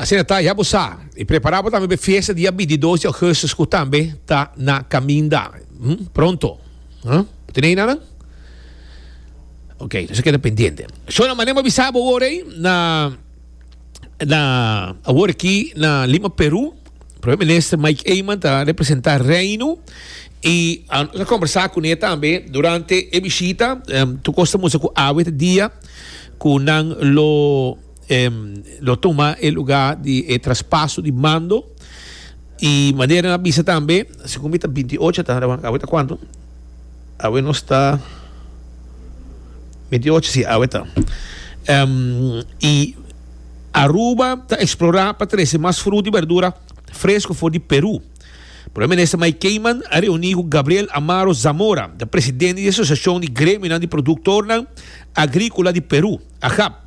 Asina ta, ya bo sa, i prepará bo tambe pa e fiesta di abi di dos di augustus ku tambe ta na kaminda pronto. Hm? Bo tene ei na nan? Oke, nos a keda pendiente. So na manera mi a bisa bo awor ei, na na awor aki na Lima, Peru, Prome Minister Mike Eman ta representá Reino i nos a kombersá kuné tambe durante e bishita. Tur kos ta mustra ku awe ta dia ku nan lo. Lo tuma e lugá di e traspaso di mando i manera nan a bisa tambe, segun mi ta binti ocho ta awe awe ta kuantu? Awe nos ta binti ocho si awe ta i Aruba ta eksplorá pa trese mas fruta i berdura fresku for di Peru. Prome minister Mike Keiman a reuní ku Gabriel Amaro Zamora, presidente di Asosiashon di Gremionan di Produktornan Agríkola di Peru, AGAP.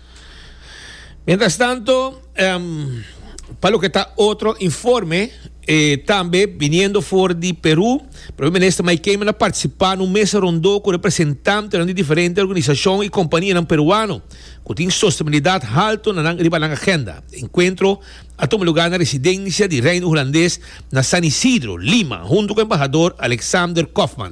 Mientras tanto, em, pa loke ta otro informe, e tambe biniendo for di Peru, Primer Minister Mike Keiman a participá na un mesa rondó cu representantenan di diferente organisacion y companianan Peruano cu tin sostenibilidad halto na nan riba nan agenda. E encuentro a tuma lugá na residencia di Reino Hulandes na San Isidro, Lima, hunto cu Embahador Alexander Kofman.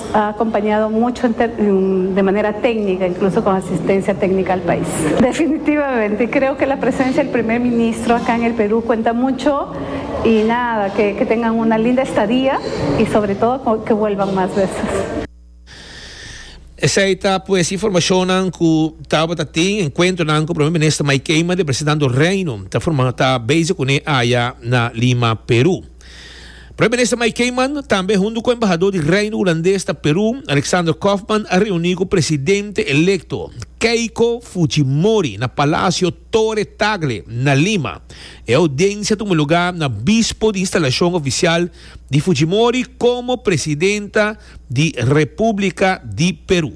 A acompañado mucho en ter, de manera técnica, incluso con asistencia técnica al país. Definitivamente, y creo que la presencia del Primer Ministro acá en el Perú cuenta mucho y nada, que, que tengan una linda estadía y sobre todo con, que vuelvan más veces. Esey ta pues informacionnan cu tabata tin encuentronan cu Primer Minister Mike Eman di Presidente Andor Reino ta forma ta bezig cune aya na Lima, Peru. Prome Minister Mike Keiman, tambe huntu ku embahadó di Reino Hulandes ta Perú, Alexander Kofman a reuní ku Presidente Elekto Keiko Fujimori na Palasio Torre Tagle na Lima. E oudiensia tuma lugá na bispo di instalashon ofisial di Fujimori komo Presidenta di Repúblika di Perú.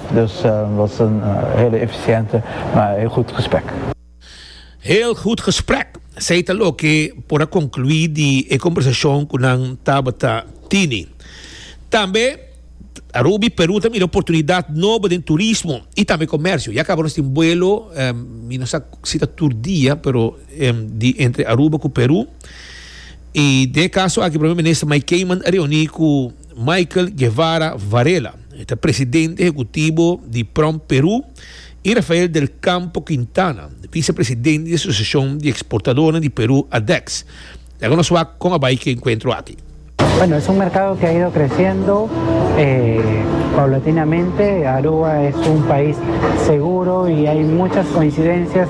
Dus Wilson heel eficiente maar heel goed gesprek. Heel goed gesprek, esei ta loke por a conclui di e conversacion cu nan tabata tini. Tambe Rubi Peru ta mira oportunidad nobo den turismo y tambe comercio. Ya caba nos tin vuelo, mi no sa si ta tur dia, pero di entre Aruba cu Peru. Y den e caso aki Primer Minister Mike Keiman a reuni cu. Michael Guevara Varela, e ta presidente ehekutibo di Prom Perú, i Rafael del Campo Quintana, visepresidente di Asosiashon di Eksportadornan di Perú, ADEX. Laga nos wak kon a bai ku e enkuentro aki. Bueno, es un mercado que ha ido creciendo eh, paulatinamente. Aruba es un país seguro y hay muchas coincidencias.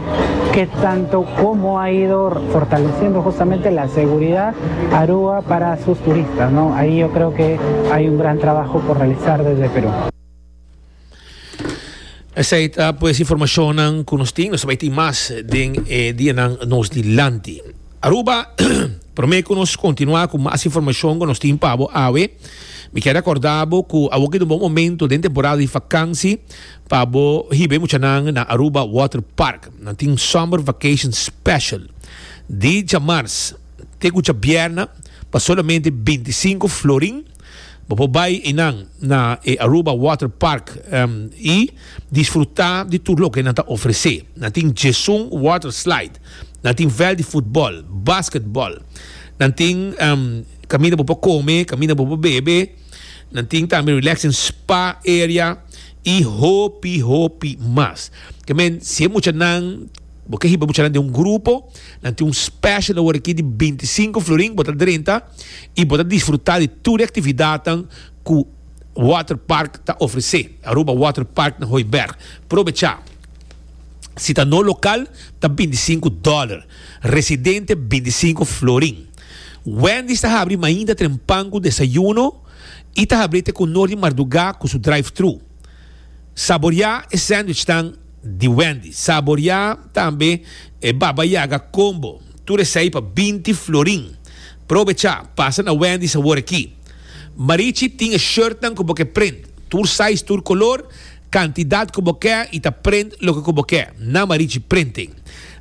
que tanto como ha ido fortaleciendo justamente la seguridad Aruba para sus turistas, ¿no? Ahí yo creo que hay un gran trabajo por realizar desde Perú. Esai ta pues informacionnan cu nos tin, nos bai tin mas den e dianan nos di lanti. Aruba, prome cu nos continua cu mas informacion cu nos tin pabo awe, mi kier recordabo cu awo ki un bon momento den temporada di vakansi, Pa bo hiba e muchanan na Aruba Water Park nan tin Summer Vacation Special di djamars te ku djabièrnè pa solamente binti sinku florin. Bo por bai einan na e Aruba Water Park i disfrutá di tur loke nan ta ofresé. Nan tin djesun water slide, nan tin vèlt di futbòl, basketbòl, nan tin kaminda bo por kome, kaminda bo por bebe, nan tin tambe relaxing spa area. y hopi hopi mas. Ke men si e muchanan bo ke hiba muchanan den un grupo nan tin un special awor aki di binti sinku florin bo ta drenta y bo ta disfruta di tur e actividadnan ku water park ta ofrece Aruba water park na Hooiberg probecha si ta no local ta binti sinku dollar residente binti sinku florin Wendy's ta habri mainta trempan ku desayuno. i ta habri te ku Noor di Mardugá ku su drive-thru. Saboreá e sandwichnan di Wendy. Saboreá tambe e Baba Yaga Combo, tur esei pa binti florin. Probechá pasa na Wendy Sabor aki. Marichi tin e shirtnan ku bo ke print, tur size tur kolor, kantidat ku bo ke i ta print loke ku bo ke na Marichi Printing.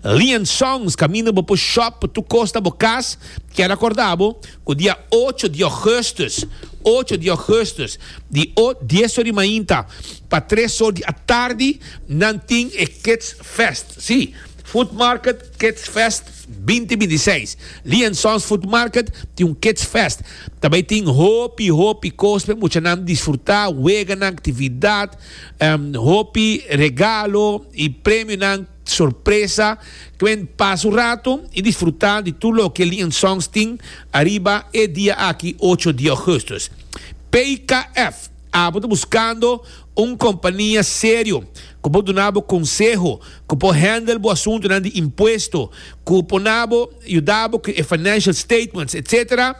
Lian Songs kaminda bo por shop por tur kos na bo kas, kier akorda bo Ku dia ocho di Ougustus, ocho di Ougustus, di o dies or di mainta pa tres or di atardi, nan tin e Kids Fest. Sí, Food Market Kids Fest binti binti seis. Lee and Sons Food Market tin un Kids Fest. Ta bai tin hopi, hopi kos pa e muchanan disfrutá, weganan, aktividat, hopi regalo i premionan. Sorpresa, Gwen pasa un rato y disfruta di tur loke el di Ian Songs tin ariba e dia aki ocho di augustus. PKF a bo ta buscando un compania serio cu por duna bo conseho, cu por handle bo asuntonan di impuesto, cu por na bo yuda bo cu e financial statements, etc.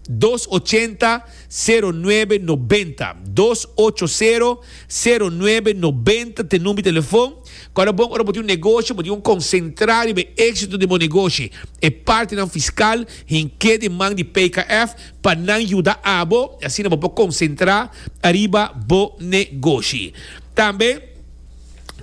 Dos ochenta, sero nuebe nobenta, dos ocho sero, sero nuebe nobenta ta e number di telefon. Kua ta bon ora bo tin un negoshi, bo tin un konsentrá riba e éksito den bo negoshi. E partinan fiskal hink'é den man di PKF pa nan yuda abo i asina bo por konsentrá ariba bo negoshi. Tambe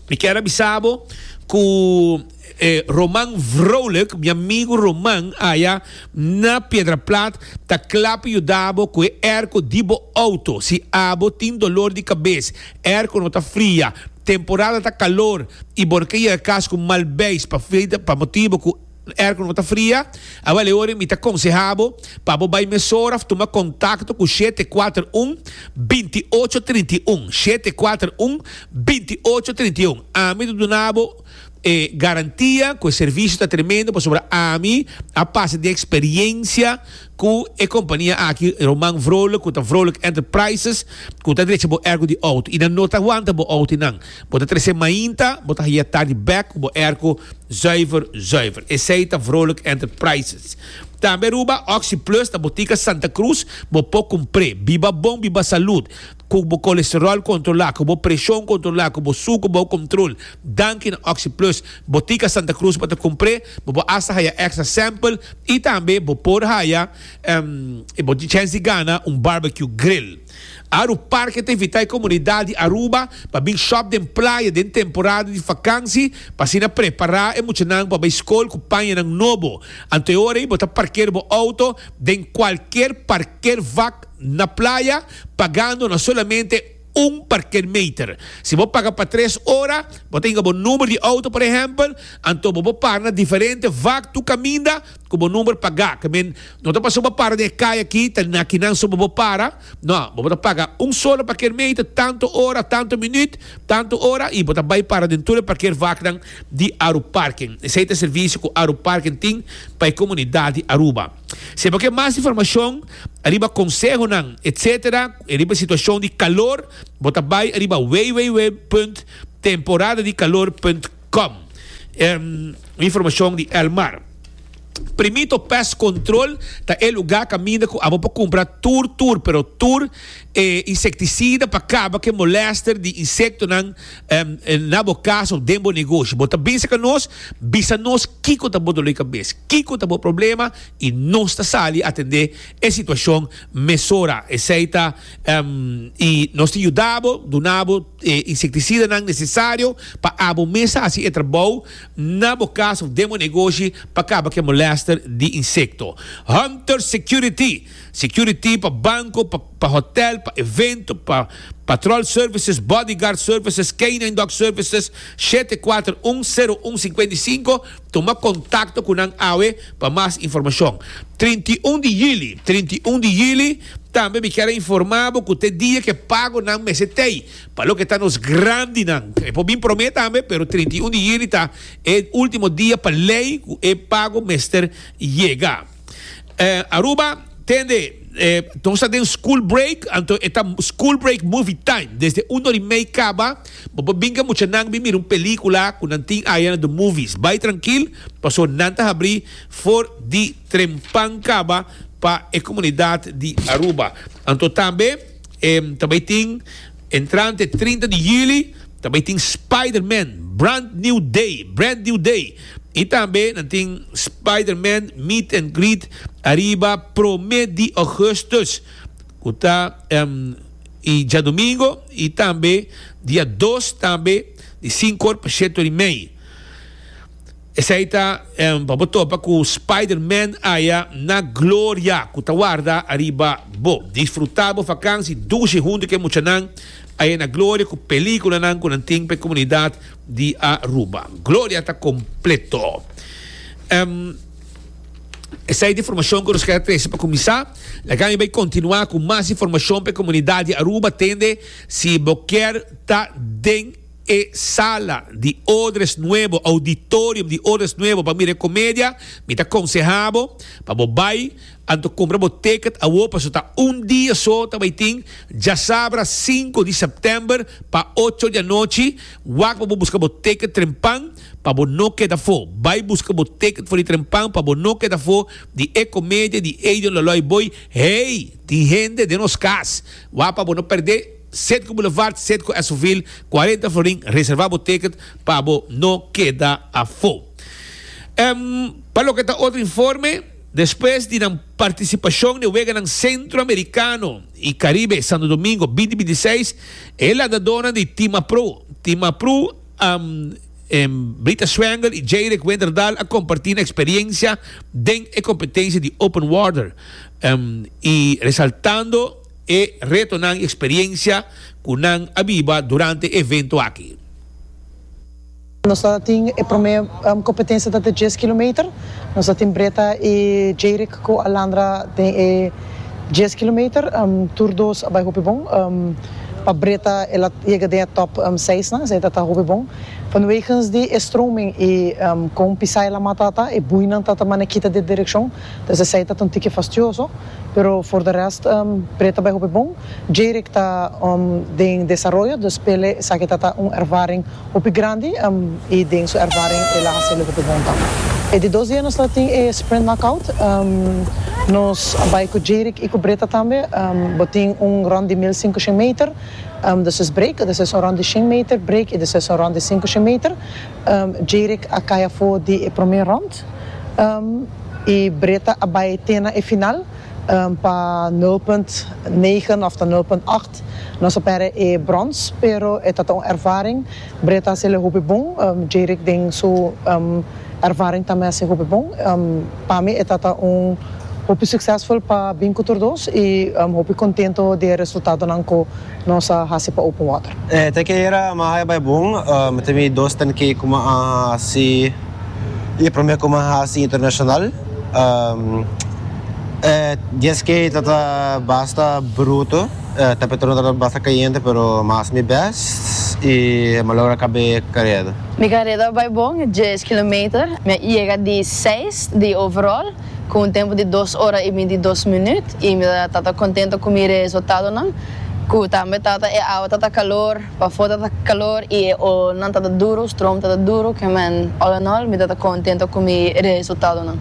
mi kier a bisa bo ku. E Roman Vrolijk, mi amigu Roman aya na Piedraplat ta kla pa yuda bo ku e airco di bo auto. Si abo tin dolor di kabes, airco no ta fria, temporada ta kalor i bo no ke yega kas ku mal beis pa freide pa motibu ku airco no ta fria, a wale ora mi ta konseha bo pa bo bai mesora of tuma kontakto ku shete kuater un, binti ocho trinta i un, shete kuater un, binti ocho trinta i un. Ami ta duna bo. E garantia cu e servicio ta tremendo pasobra ami a pasa den experiencia cu e compania aki Roman Vrolijk cu ta Vrolijk Enterprises cu ta drecha bo ergo di auto y nan no ta wanta bo auto y nan bo ta trece mainta bo ta haya tardi bek cu bo ergo zuiver zuiver esey ta Vrolijk Enterprises. Tambe Aruba Oxyplus ta Botica Santa Cruz bo por cumpre biba bon biba salud. Ku bo kolesteròl kontrolá, ku bo preshon kontrolá, ku bo suker bou komtrol, danki na OxiPlus, Botica Santa Cruz pa ta kumpr'é, bo por asta haya èkstra sèmpel i tambe bo por haya e bo tin chèns di gana un barbecue grill. Aru Parke ta invitá e komunidat di Aruba pa bin shòp den playa den temporada di fakansi pa asina prepará e muchanan pa bai skol ku pañanan nobo. Anto e ora ei bo ta parker bo outo den kualker parkervak. na playa pagando na solamente un parkeermeter. Si bo paga pa tres ora, bo ta hinga bo number di auto por ehempel, anto bo por para na diferente vak tur kaminda ku bo number pagá. Ke men no ta pasá bo a para den e kai aki, ta na kinan so bo por para. No, bo por ta paga un solo parkeermeter, tantu ora, tantu minüt, tantu ora, i bo ta bai para den tur e parkeervaknan di Aruparken. Esei ta e servisio ku Aruparken tin pa e komunidat di Aruba. Sepa ke mas informashon ariba konsehonan etc. Riba e situashon di kalor bo ta bai ariba www.temporadadikalor.com. Un informashon di Elmar. Primito Pest Control ta e lugá kaminda ku abo por kumpra tur tur pero tur e insektisida pa kaba ku e molèster di insektonan. na bo casa of den bo negoshi bo ta binse ca nos bisa nos kico ta bo dolor di cabes kico ta bo problema y nos ta sali atende e situacion mesora esey ta y nos ta yuda bo duna bo e insecticidanan necesario pa abo mes ta haci e trabou na bo casa of den bo negoshi pa caba cu e molester di insecto Hunter Security Security pa banco, pa hotel, pa evento, pa patrol services, bodyguard services, canine dog services, shete kuater un, sero un singkuenta i sinku, tuma contacto cu nan awe pa mas informacion. Trinta i un di yuli, trinta i un di yuli, tambe mi kier a informa bo cu ta e dia ke pago nan mester tey pa loke ta nos grandinan. E por bin prome tambe, pero trinta i un di yuli ta e ultimo dia pa ley cu e pago mester yega. Aruba tende e nos ta den school break anto e ta school break movie time desde un ori mei kaba bo por bin ka mucha nan bin mira un pelikula ku nan tin aya na the movies bai trankil paso nan ta habri for di trempan kaba pa e komunidat di Aruba anto tambe ta bai tin entrante trinta di yuli ta bai tin spiderman brand new day brand new day Y tambe nan tin Spiderman Meet and Greet ariba prome di Augustus cu ta y djadomingo y tambe dia dos tambe di cinco or pa siete or y mei. Esai ta pa bo topa cu Spiderman aya na gloria cu ta warda ariba bo. Disfruta bo vakansi dushi hunto cu e muchanan aya na gloria cu peliculanan cu nan tin pa e comunidad. Di Aruba. Gloria ta completo. Ehm, esai ta e informacion cu nos quier trece. Pa cuminsa, laga mi bay continua cu mas informacion pa e comunidad di Aruba, tende si bo kier ta den e sala di odres nuevo, auditorium di odres nuevo pa mira e comedia, mi ta conseha bo pa bo bay. Anto compra bo ticket awo paso ta un dia so ta bay tin djasabra cinco di september pa ocho di anochi, wak pa bo busca bo ticket trempan pa bo no keda fo, bay busca bo ticket for di trempan pa bo no keda fo di e comedia di Adrian Loloy Boy hey tin hende den nos cas wak pa bo no perde Citgo Boulevard Citgo Esoville cuarenta florin reserva bo ticket pa bo no keda afo. Em pa loke ta otro informe. Despues di nan partisipashon den Weganan Sentro-Amerikano i Karibe Santo Domingo binti binti seis, e landadónan di Timapro, Timapru, Brita Swangel i Jayrick Winterdal a kompartí nan eksperiensia den e kompetensia di Open Water i resaltando e retonan i eksperiensia ku nan a biba durante e evento aki. Nos a tin e promé kompetensia ta den dies kilometer. Nos a tin Breta i Jeirik ku Alandra den e dies kilometer. Tur dos a bai hopi bon. Pa Breta el a yega den e tòp seis nan, esei ta ta hopi bon. Vanwegens di e stroming i kon pisai la mata ta, e buinan ta ta manera kita di direkshon. Entonces esey ta ta un tiki fastioso, pero for de rest pre ta bay hopi bon. Jayrick ta den desaroyo, dus p'e esaki ta ta un ervaring hopi grandi y den su ervaring el a hacelo hopi bon tambe. E di dos dia nos ta tin e sprint knockout, nos a bay cu Jayrick y cu Britta tambe, bo tin un rond di mil singushen meter, despues break, despues un rond di shen meter, break y despues un rond di singushen meter. Jayrick a cay afo di e prome rond. Bart y Britta a bay te na e final pa nul punt negen of ta nul punt acht. Nos a perde e brons pero e ta ta un ervaring. Britta a seli hopi bon, Jerick den su ervaring tambe a haci hopi bon. Pa mi e ta ta un hopi succesful pa bin cu tur dos y hopi contento di e resultadonan cu nos a haci pa Open Water. Te ke era a maha e bay bon. Mi ta midy dos ten ke como a haci. I e promé ku mi a hasi internashonal. E dies ke ta ta basta bruto. E temperatura no tabata basta kayente pero mi a hasi mi bèst i mi a logra kab'é kareda. Mi kareda a bai bon, dies kilometer. Mi a yega di seis di overall ku un tempu di dos ora i binti dos minüt i mi ta ta kontento ku mi resultadonan ku tambe ta ta e awa ta ta kalor. Pafó tata kalor i e olnan tata duru, strom tata duru, ke men all in all mi tata kontento ku mi resultadonan.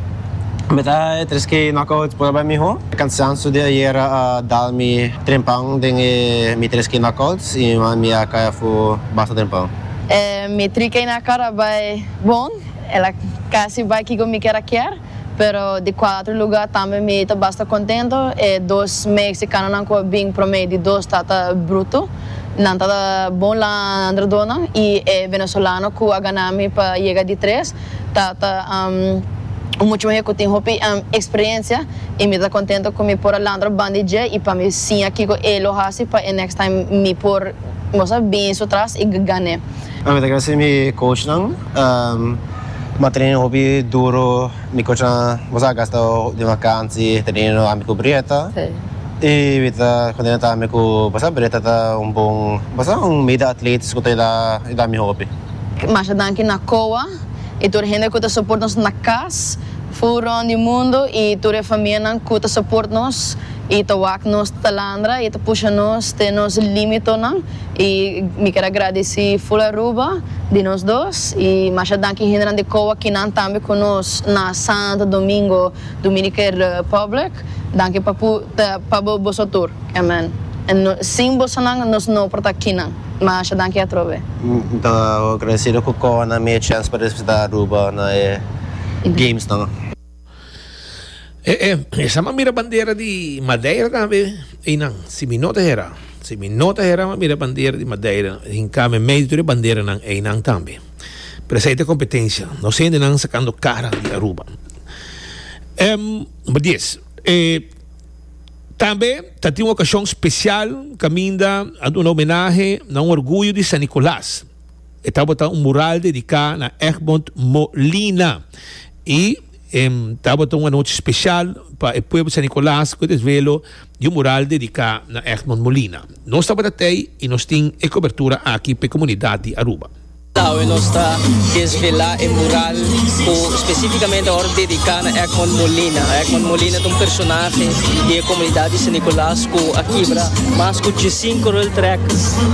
Mi ta e tres ke e knockouts por bai mihó. E kansansu di ayera a dal mi trempan den e mi tres ke knockouts i mi a kai afu basta trempan. E mi tri ke knock out a bai bon, el a kasi bai kiko mi kier a kier. pero di kuater luga tambe mi ta basta kontento, e dos meeksikanonan ku a bin promé di dos ta ta brutu, nan ta bon landradonan i e venezolano ku a ganá mi pa yega di tres ta ta un muchu mihé ku tin hopi eksperensia i mi ta kontento ku mi por a landra banda di dje i pa mi siña kiko e lo hasi pa e next time mi por mos a bin su tras i gané. Mi ta grasé mi coachnan. M'a tenido hopi duro mi cochnan boso a gasta den vakantie teniendo ami cu Brietta y Brietta continua ta ami cu boso Brietta ta un bon boso ta un meda atletas cu ta yudá yudá mi hopi. Masha danki na Coa y tur e hende cu ta support nos na cas fu rond di mundo y tur e famianan cu ta support nos y ta wak nos talandra y ta pusha nos te nos limitonan. Y mi ker a gradeci full Aruba di nos dos y masha danki hendenan di Coa kinan tambe cu nos na Santo Domingo Dominican Republic. Danki pa cu ta pa bo boso tur. Amen. Sin bosonan nos no por ta kinan. Masha danki atrobe. Mi ta agradecido cu Coa nan mi e chance pa representa Aruba na e Gamesnan. E e esa ma mira bandera di Madeira tambe i nan si mi no ta hera si mi no ta hera ma mira bandera di Madeira hinka me medio tur e bandera nan ei nan tambe pero esei ta competencia no sende nan sacando cara di Aruba em number dies e tambe ta tin un ocasion special caminda a duna homenahe na un orgullo di San Nicolas. E tabata un mural dediká na Egmond Molina i e tabata un anochi spesial pa e pueblo San Nicolas ku e desvelo di un mural dediká na Egmond Molina. Nos tabata t'ei i nos tin e kobertura aki p'e komunidat di Aruba. Awe nos ta desvelá e mural ku spesífikamente awor dediká na Egmond Molina. Egmond Molina ta un personahe di e komunidat di San Nicolas. cu a kibra mas cu diesinco rail track.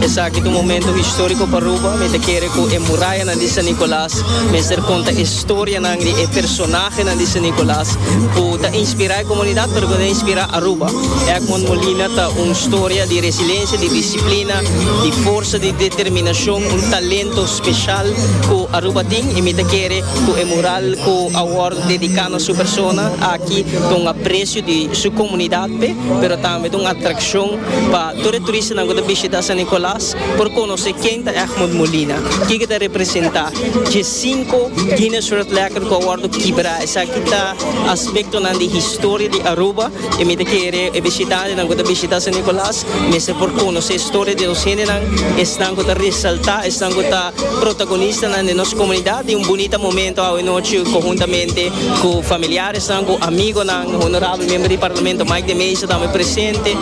Esaki ta un momento historico pa Aruba. Mi ta kere cu e murayanan di San Nicolas mester conta e historianan di e personahenan di San Nicolas cu ta inspira e comunidad pero cu ta inspira Aruba. Egmond Molina ta un storia di resiliencia, di disciplina, di forsa, di determinacion, un talento special cu Aruba tin y mi ta kere cu e mural cu a worde dedica na su persona aki ta un aprecio di su comunidad. Marte, pero tambe ta un atrakshon pa tur e turistanan ku ta bishita San Nikolas por konosé ken ta Egmond Molina, kiko e ta representá. Dje sinku Guinness World Record ku a wòrdu kibrá, esaki ta aspektonan di historia di Aruba i mi ta kere e bishitantenan ku ta bishitá San Nikolas mester por konosé historia di nos hendenan, esnan ku ta resaltá, esnan ku ta protagonistanan den nos komunidat. I un bunita momentu awe nochi konhuntamente ku familiares. San cu amigonan, Honorabel Member di Parlamento Mike de Meza tambe presente,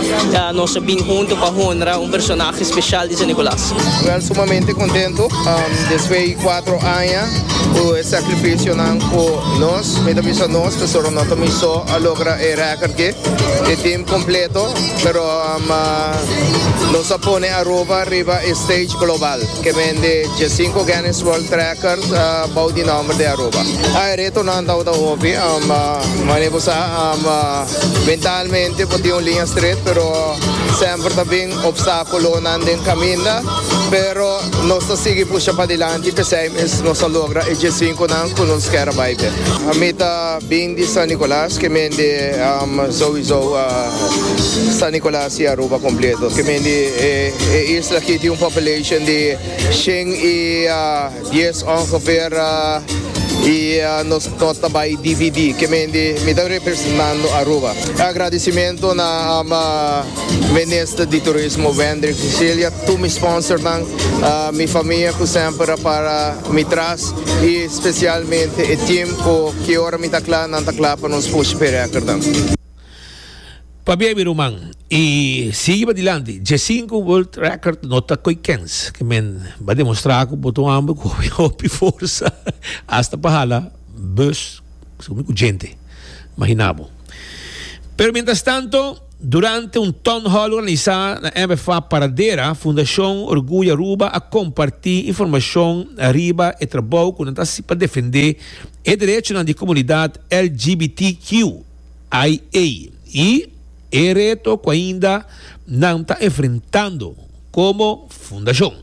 nos a bin hunto pa honra un personahe special di San Nicolas. Well, sumamente contento, despues di cuatro aña cu e sacrificionan cu nos, mi ta bisa nos, pasobra no ta mi so, a logra e record aki, e team completo, pero nos a pone Aruba riba e stage global. Ke bende dje sinku Guinness World Record bou di nòmber di Aruba. E retonan tabata hopi. Manera bo sa, mentalmente bo tin un liña stret, pero semper ta bin opstákulonan den kaminda. Pero nos ta sigui pusha padilanti, p'esei mes nos a logra e dje sinkunan ku nos kier a bai be. Mi ta bin di San Nicolas, ke bende souizou San Nicolas. Si Aruba kompleto, ke men di e isla aki tin un populashon di shen i dies ongeveer, i nos no ta bai dividí, ke men di mi ta representando Aruba. Agradisimentu na Minister di Turismo Wendrick de Cilia, tur mi sponsornan, mi famia ku semper a para mi tras i spesialmente e tim ku ki ora mi ta kla nan ta kla pa nos pushi perekernan. Pabia mi ruman y sigui padilanti. Dje sinku world record no ta koe kens. Ke men ba demostra ku bo ta un homber ku hopi forsa hasta pa hala bus su único djente. Imagina bo. Pero mientras tanto, durante un town hall organisa na MFA Paradera, Fundacion Orgullo Aruba a komparti informashon riba e trabou ku nan ta hasi pa defende e derechonan di komunidat LGBTQ. IAEA, i e reto ku ainda nan ta enfrentando komo fundashon.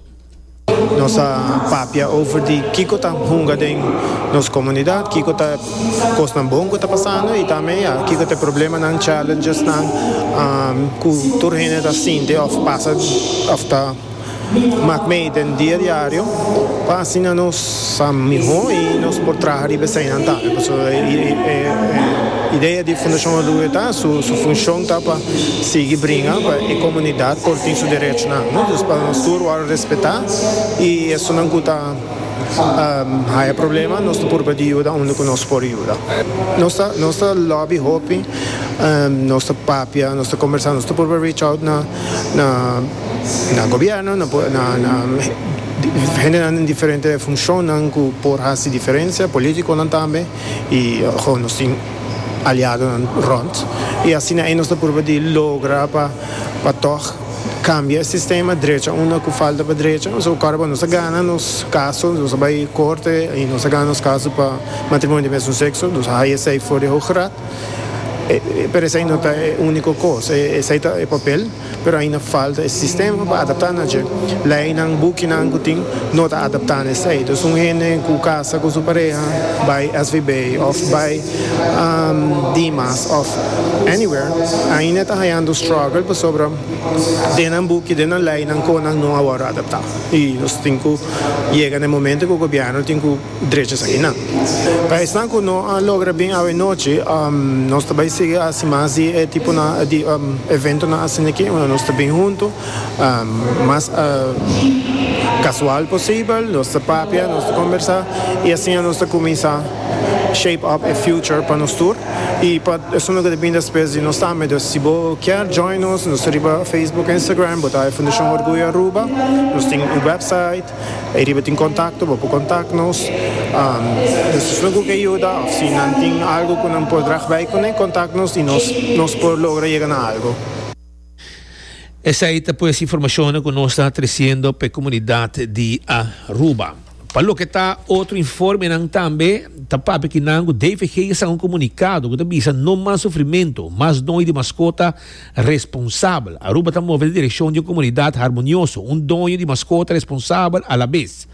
Nos a papia over di kiko ta hunga den nos komunidat, kiko ta e kosnan bon ku ta pasando i tambe ya kiko ta e problemanan, challengesnan, ku tur hende ta sinti òf pasa òf ta. Maak mee den dia diario pa asina nos sa mihó i nos por traha riba eseinan tambe. Pasobra e idea di Fundashon Orgullo ta su funshon ta pa sigui bringa pa e komunidat por tin su derechonan, no? Dus pa nos tur wòrdu respetá i esunnan ku ta haya problema nos ta purba di yuda unda ku nos por yuda. Nos ta nos ta lòbi hopi, nos ta papia, nos ta kombersá, nos ta purba reach out na na. na gobierno, na po, na, na hendenan den diferente funcionnan cu por haci diferencia, politiconan tambe, y ajo nos tin aliadonan rond, y asina ei nos ta purba di logra pa, pa tog cambia e sistema, drecha unda cu falta pa drecha, so ora cu nos a gana nos caso, nos a bay corte y nos a gana nos caso pa matrimonio di mesun sexo, nos a haya esey for di Hoge Raad, pero esey no ta e unico cos, esey ta e papel. pero ainda falta e sistema pa adapta na dje leinan, bukinan cu tin no ta adapta na esey. Entonces un hende cu casa cu su pareha bay SVB of bay Dimas of anywhere ainda ta hayando struggle pasobra den nan buki, den nan leinan conan no a worde adapta y nos tin cu yega na e momento cu gobierno tin cu. drechas akinan. Pa esnan ku no a logra bin awe nochi, nos ta bai sigui a hasi mas di e tiponan di eventonan asin'aki unda nos ta bin huntu mas kasual posibel, nos ta papia, nos ta kombersá i asiña nos ta kuminsá shape up e future pa nos tur. I pa esun lo ke ta bin despes di nos tambe. Dus si bo kier join nos, nos ta riba Facebook, Instagram, bo ta Fundashon Orguyo Aruba, nos tin un wèpsait. Ei riba tin kontakto, bo por kontak nos. Nos ta suma ku ke yuda òf si nan tin algu ku nan por drag bai kuné, kontak nos i nos nos por logra yega na algu. Esei ta pues informashonnan ku nos ta tresiendo pa e komunidat di Aruba. Pa loke ta otro informenan tambe ta papia kinan ku DVG yesa un komunikado ku ta bisa no mas sufrimentu, mas noi di maskota. Responsabel, Aruba ta move na direkshon di un komunidat harmonioso, un doño di maskota responsabel alabes.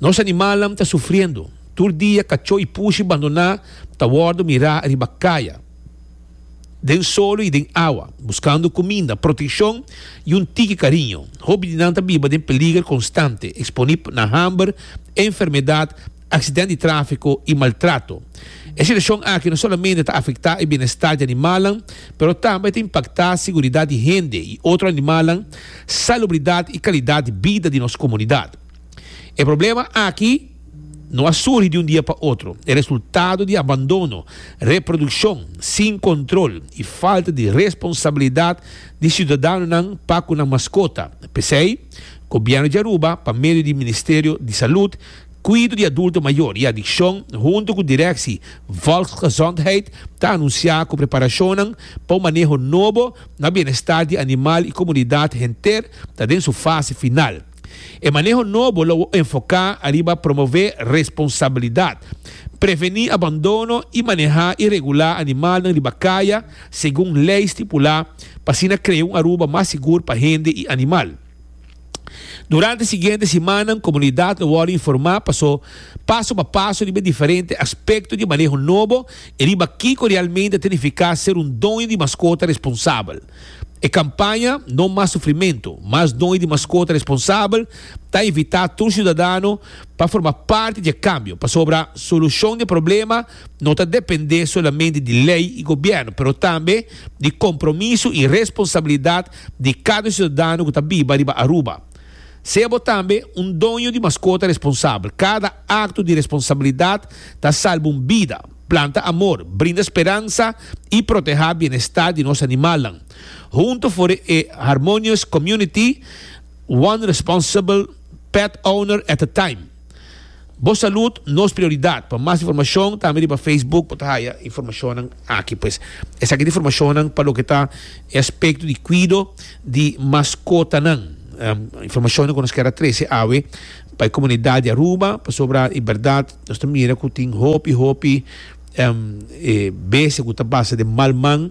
Nos animalnan ta sufriendo. Tur dia kachó i pushi bandoná ta wòrdu mirá riba kaya, den solo i den awa, buskando kuminda, protekshon i un tiki kariño. Hopi di nan ta biba den peliger konstante, eksponí na hamber, enfermedat, aksident di tráfiko i maltrato. E situashon aki no solamente ta afektá e bienestar di animalnan, pero tambe ta impaktá seguridat di hende i otro animalnan, salubridat i kalidat di bida di nos komunidat. E problema aki no a surgi di un dia pa otro, e resultado di abandono, reprodukshon sin kontrol i falta di responsabilidat di siudadanonan pa ku nan maskota. P'esei, Gobièrnu di Aruba, pa medio di Ministerio di Salud, Kuido di Adulto Mayor i Adikshon huntu ku Direksi Volksgezondheid ta anunsiá ku preparashonnan pa un maneho nobo na bienestar di animal i komunidat henter ta den su fase final. E maneho nobo lo enfoká ariba promové responsabilidat, prevení abandono i manehá i regulá animalnan riba kaya segun lei stipulá pa asina krea un Aruba mas sigur pa hende i animal. Durante siguiente simannan komunidat lo wòrdu informá paso paso pa paso riba e diferente aspekto di maneho nobo i riba kiko realmente ta nifiká ser un doño di maskota responsabel. E kampaña No mas sufrimentu, mas doño di maskota responsabel ta invitá tur siudadano pa forma parti dje kambio pasobra solushon di e problema no ta dependé solamente di lei i gobièrnu, pero tambe di kompromiso i responsabilidat di kada siudadano ku ta biba riba Aruba. Sea bo tambe un doño di maskota responsabel, kada akto di responsabilidat ta salba un bida, planta amor, brinda speransa i protehá bienestar di nos animalnan. Huntu for e harmonious community, one responsible pet owner at a time. Bo salud nos prioridad. Pa mas informacion tambe riba Facebook bo ta haya informacionnan aki pues. Esaki ta informacionnan pa loke ta e aspecto di cuido di mascotanan. Informacionnan cu nos kier a trece awe pa e comunidad di Aruba pasobra i berdad nos ta mira cu tin hopi hopi bese cu ta basa den mal man.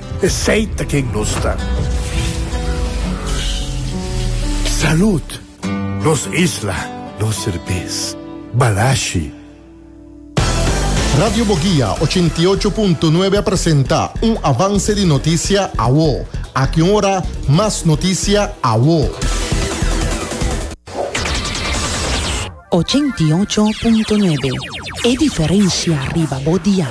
Esey ta ken nos ta. Salud! Nos isla, nos serbes. Balashi! Radio Boguia ochenta i ocho punto nuebe a presenta un avanse di notisia awo. Aki un ora mas notisia awo. Ochenta i ocho punto nuebe, e diferencia riba bo dial.